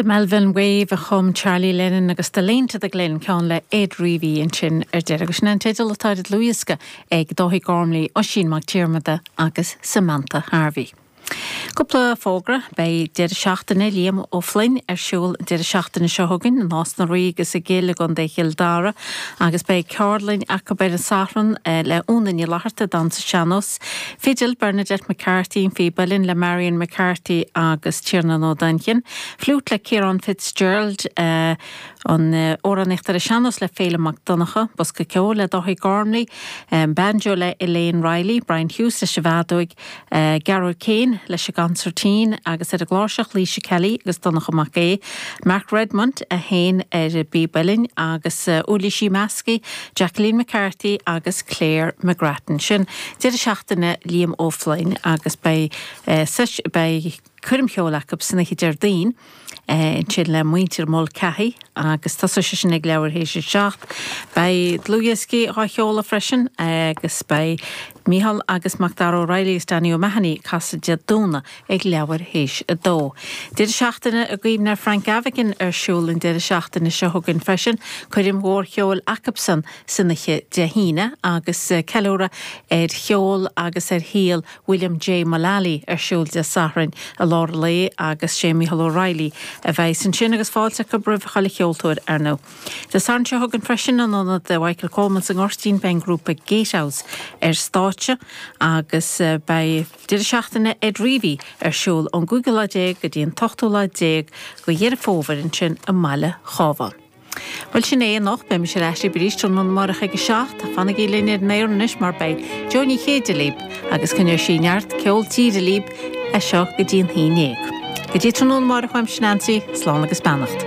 The Melvin Wave a chum Charlie Lennon agus The Lane to the Glen, ceann le Ed Reavy ansin ar deireadh. Agus sin é an teideal atá ar an dlúthdhiosca ag Dáithí Gormley, Oisín Mac Diarmada agus Samantha Harvey. Cúpla fógra, beidh Deireadh Seachtaine Liam Ó Floinn ar siúl an deireadh seachtaine seo chugainn i Nás na Rí agus i gCill i gContae Chill Dara agus beidh ceardlainn acu ar an Satharn le Úna Ní Fhlatharta, Dansa Sean-Nós, Fidil, Bernadette McCarthy, Píb Uilleann le Marion McCarthy agus Tiarnan Ó Duinnchinn, Fliúit le Ciarán Fitzgerald, Amhránaíocht ar an Sean-nós le Féilim Mac Donncha, Bosca Ceoil le Dáithí Gormley, Banjo le Elaine Reilly, Brian Hughes leis an bhfeadóig, Gearóid Keane leis an gcansairtín agus ar an gcláirseach, Laoise Kelly agus Donncha Mac Aodha, Mark Redmond a sheinn ar an bpíb uilleann agus Uirlísí Measctha, Jacqueline McCarthy agus Claire McGrattan. Sin deireadh seachtaine Liam Ó Floinn agus beidh beidh coirm cheoil acu san oíche Déardaoin ansin le muintir Mulcahy agus tosóidh sé sin ag leathuair théis a seacht. Beidh dlúthdhioscaí á sheoladh freisin agus beidh Micheál agus Macdara Ó Raghallaigh agus Danny O'Mahony ag casadh Dé Domhnaigh ag leathuair théis a dó. Deireadh seachtaine i gcuimhne ar Frank Gavigan ar siúl an deireadh seachtaine seo chugainn freisin, coirm mhór cheoil acusan san oíche Dé hAoine agus ceiliúradh ar cheol agus ar shaol William J. Mullaly ar siúl Dé Sathairn i lár an lae agus sé Micheál Ó Raghallaigh a bheidhs ansin agus fáilte acu roimh chuile cheoltóir ar ndóigh. Dé Sathairn seo chugainn freisin in Ionad Mhichael Coleman sa nGoirtín beidh an grúpa Gatehouse ar stáitse agus beidh. Deireadh seachtaine Ed Reavy ar siúl ón gcúigiú lá déag go dtí an t-ochtú lá déag de Dheireadh Fómhair ansin i mbaile an Chabháin. Bhuel sin é anocht, beimis ar ais libh arís tráthnóna amárach ag a seacht. Fanaigí linn ar an aer anois mar beidh Jó Ní Chéide libh agus coinneoidh sí neart ceol tíre libh as seo go dtí an haon dhéag. Go dtí tráthnóna amárach uaimse Neansaí, slán agus beannacht.